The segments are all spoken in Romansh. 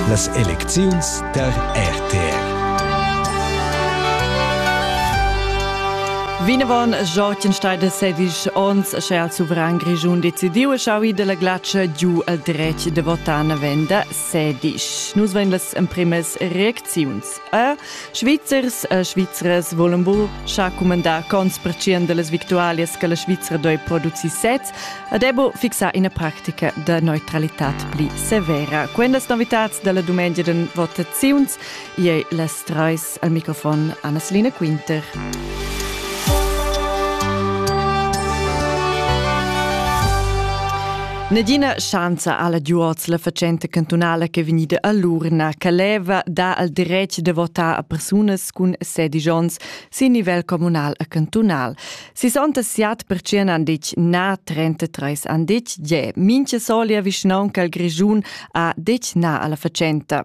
Las elecziuns tar RTR Vinavon Jortenstein sedisch ons sche al suveran Grischun decidiu e schaui della glatscha giu al dretg de votar na venda sedisch. Nus vein las emprimas reacziuns. Er Svizzers e Svizras volan bu scha cumandar cons percient de las victualias che la Svizra doi produci sez e debo fixar ina practica de neutralitat pli severa. Quendas novitats della dumengia den votaziuns iei les treis al microfon Annaslina Quinter. Nadina schanza alla Duoz, la fatschenta cantunala che vegnida a l'urna, che leva da al dretg de votar a persunas cun sedici onns sin nivel communal e cantunal. 66% han detg na, 33 han detg je. Minche solia vischnaunca al Grischun ha detg na alla fatschenta.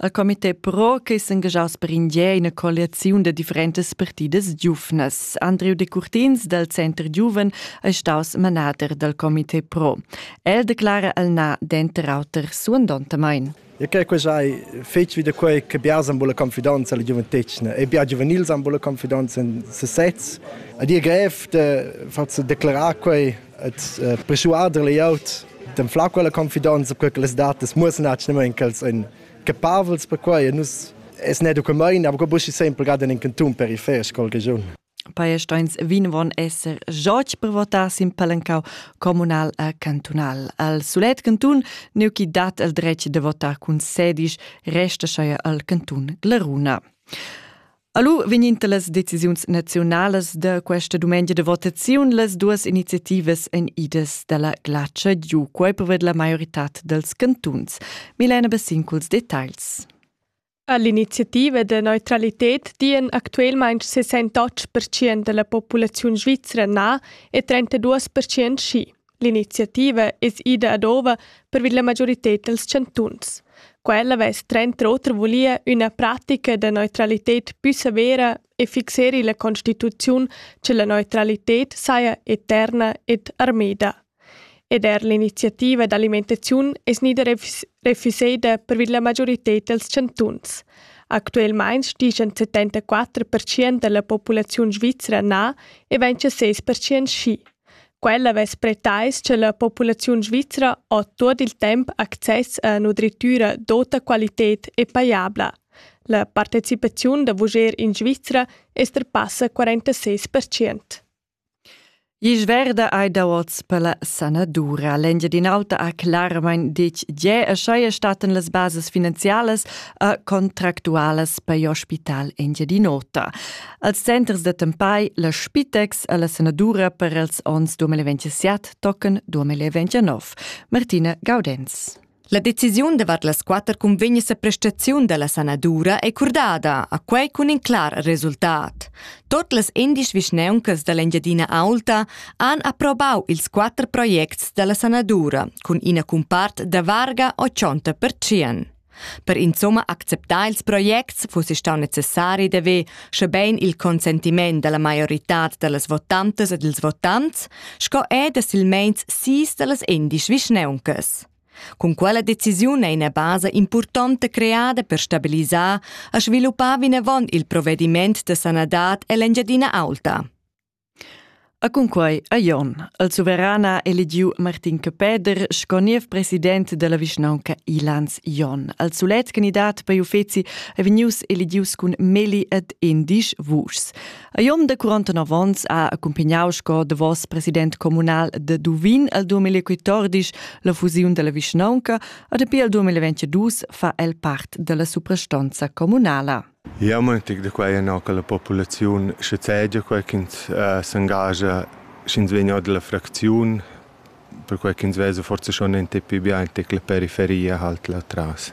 El comité pro che s'engagiaus per indier ina coaliziun da differentas partidas giuvnas. Andriu Decurtins dal Center Giuven è staus manader dal comité pro. El declara el na denter auter suandontamain. E che quei sai fetg wieder quei che bia san bulla confidenza alla giuventetgna e bia giuvenil san bulla confidenza in se sez. A dir grev de far declarar quei Et persuader layout dem fla quella confidenza per che las datas mussen actualmente ch'els ein capavels per quei e nus es ne document aber buschi sempre gerade in canton periferisch col region Pajesteins vinvon esser joc per votar sin palencau comunal a cantunal. Al sulet cantun neu chi dat el dretg de votar cun sedisch resta scheia al cantun Glaruna. Alu vigninta las decisiuns naziunalas da questa dumengia de votaziun las duas iniziativas en idas dalla glatscha giu quei poved la maioritad dels cantuns. Milena Bassin culs details. All'iniziativa de neutralität dien actuelmaing 68% della populaziun svizra na e 32% schi. L'iniziativa es ida ad ova pervi la majorited dals chantuns. Quella vess tranter oter vulia üna pratica da neutralited pü severa e fixeri la constituziun che la neutralited saja eterna ed armeda. Ed er l'iniziativa d'alimentaziun es gnida refuseda pervi la majorited dals chantuns. Actuelmaing stischan 74% da la populaziun svizra na e 26% schi. Quella vess pretais cha la populaziun svizra ho tuot il temp access a üna drittüra d'ota qualited e pajabla. La partecipaziun da vuger in Svizra es trapassa 46 per cent. Isch verda ei da oz per la sanadura. L'Engiadin'Auta ha clarmain ditg tge e schai staten las bases finanzialas e contractualas per l'ospital Engiadin'Ota. Als centers d'attempai la Spitex e la sanadura per els onns 2027 tocan 2029. Martina Gaudenz. La decisiun davart las quatter cunvegnas a prestaziun da la sanadura è curdada, a quai cun in clar resultat. Tot las indisch vischneuncas da l'Engiadina Aulta han approbau ils quatter projects da la sanadura, cun ina cumpart da varga 80%. Per insumma acceptar ils projects fussi stau necessari d'haver, schebein il consentiment dalla maioritad dallas votantas e dils votants, sco er da silmeins sis dallas endisch vischneuncas. Cun quella decisiun è ina basa impurtonta creada per stabilisar e sviluppar vinavon il provvediment da sanadad ell'Engiadina Aulta. E cunquei ha Jon, il suveran, ha eligiu Martin Capeder sco niev president dalla vischnaunca Ilans Jon. Il sulet candidat per uffeci ei vegnius eligius cun meli ed endisch vuschs. A Jon da 49 onns ha accumpagnau sco davos president communal de Duvin el 2014 la fusiun dalla vischnaunca e dapi el 2022 fa el part dalla suprastonza communala. Jeu mon tic da quei ennà che la populaziun schazegia quei ch'ins s'engascha sch'ins vegn or dalla fracziun, perquei ch'ins vesa forsa schon enta pi bien tic la periferia halt là tras.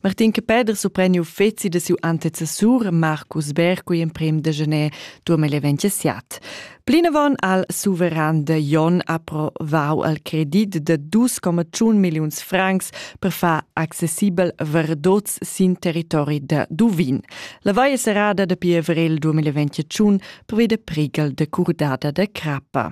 Martin Capeder supren uffeci da siu antecessur Marcus Berg cugl emprem da gener durmer l'event siat. Plinavon al suveran de Jon approvau al credit de 2,1 milliuns francs per far accessibel verdots sin territori de Duvin. La vaia serrada de pi avril 2021 prevede prigal de curdada de crappa.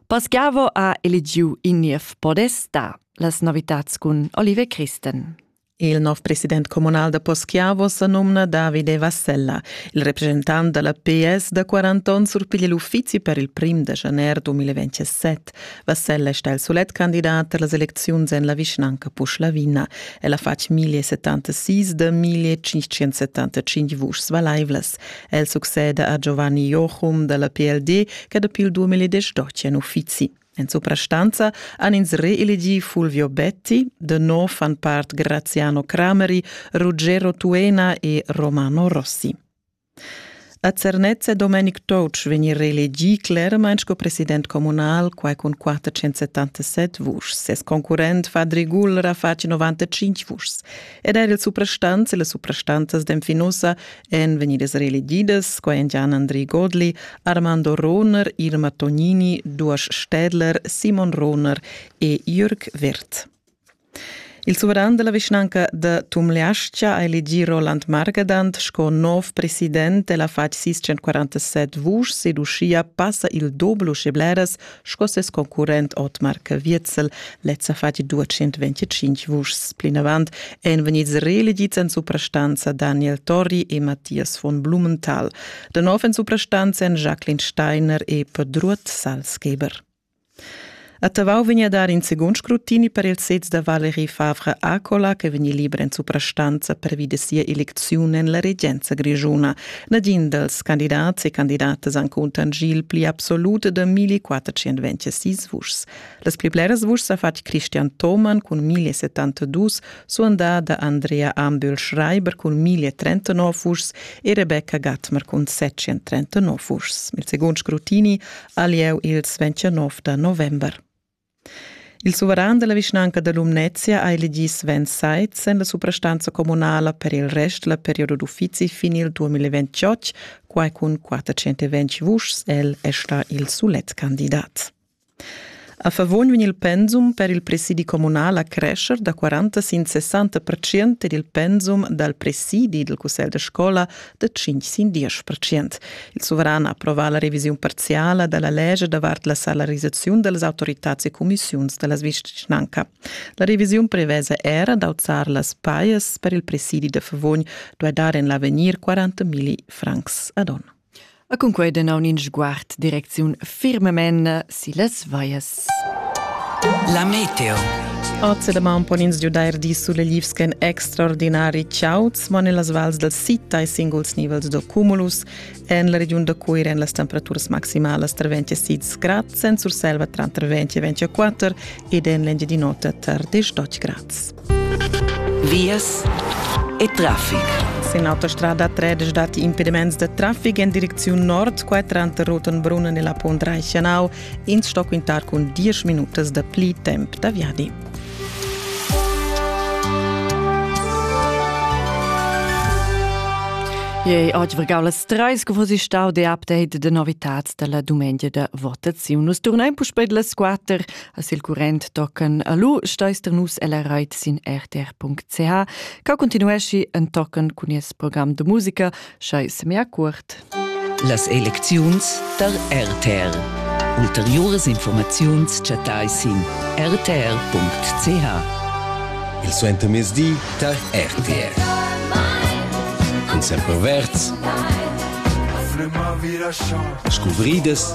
Pascavo ha eligiu in niev podesta. Las novitats cun Olive Christen. Il nov president communal da Poschiavo sa numna Davide Vassella. Il representant dalla PS da 40 onns surpiglia l'uffizi per il prim da janer 2027. Vassella sta il solet candidat per las elecziuns en la vischnanca Puschlavina. El ha fatg 1076 da 1575 vuschs valaivlas. El succeda a Giovanni Jochum dalla PLD, che dapi il 2010 dotia in uffizi. En suprastanza han ins reelegì Fulvio Betti, de nou fan part Graziano Crameri, Ruggero Tuena e Romano Rossi. A Zernez è Domenic Toutsch vegnir reelegì clermain sco president comunal quai cun 477 vuschs. Ses concurrent Fadri Guller ha fatg 95 vuschs. Ed er il suprastants e le suprastanzas d'enfinussa èn vegnidas reelegidas qua Gian Andri Godli, Armando Rohner, Irma Tognini, Duas Städler, Simon Rohner e Jürg Wirth. Il suveran della vischnanca de Tumleascia ha elegì Roland Margadant sco nov president e la fatg 647 vusch seducia passa il doblo scebleras sco ses concurrent Otmar Caviezel lezza fati 225 vuschs. Plinavant èn vegnids reelegids en suprastanza Daniel Torri e Matthias von Blumenthal. Da nov en suprastanza èn Jacqueline Steiner e Pedruot Salzgeber. A Tavau vegn a dar in secund scrutini per il sez da Valerie Favre Acola che vegni liber en suprastanza pervi da sia eleziun en la regenza grischuna. Nagin dals candidats e candidatas encunter il pli absolut da 1426 vuschs. Las pli bleras vuschs ha fatg Christian Thomann cun 1072, suandada Andrea Ambühl-Schreiber cun 1039 vuschs e Rebecca Gatmer cun 739 vuschs. Il segund scrutini ha lieu ils 29 da november. Il suveran della vischnanca da Lumnezia ha elegì Sven Seitz en la suprastanza communala per il rest la periodo d'uffizi fin il 2028, quai cun 420 vuschs. El è stà il sulet candidat. A favon vegn il pensum per il presidi communal a crescer da 40 sin 60 ed il pensum dal presidi del cussegl de scola da 5 sin 10 percent. Il suveran ha approvà la revisiun parziala da la legge davart la salarisaziun delle autorità e commissioni della vicinanca. La revisiun prevede era d'auzar las paias per il presidi de Favogn, dove dar en l'avegnir 40.000 francs ad onno. A cun quei danaun in sguard direcziun firmamen silas vaias. La meteo. Oz da maun pon ins giudair di sulle livsken extraordinari chauds, ma nellas vals dal sita e singuls nivels da cumulus en la regiun da Cuira en las temperaturas maximalas tra 26 grad, sen Surselva tranter 20 e 24 ed en l'Engiadin'Ota tar 18 grad. Vias e traffic. Sin autostrada 13 datti impediments da traffic en direcziun nord, quai tranter Rotenbrunn e la Pont Reichenau. Ins sto quintar cun 10 minutas da pli temp da viadi. Ei oggi vergau las treis che vos stau de update de novitats dalla dumengia da votaziun. Nus turnein puspei las quater As il current tochen alu steister nus ella reit sin rtr.ch ca continuesci en tochen cun nies program de musica schei semia cuort. Las elecziuns tar RTR. Ulteriores informaziuns chattai sin rtr.ch. Il suentermezdi tar RTR. Cun sempre verds. Scuvrides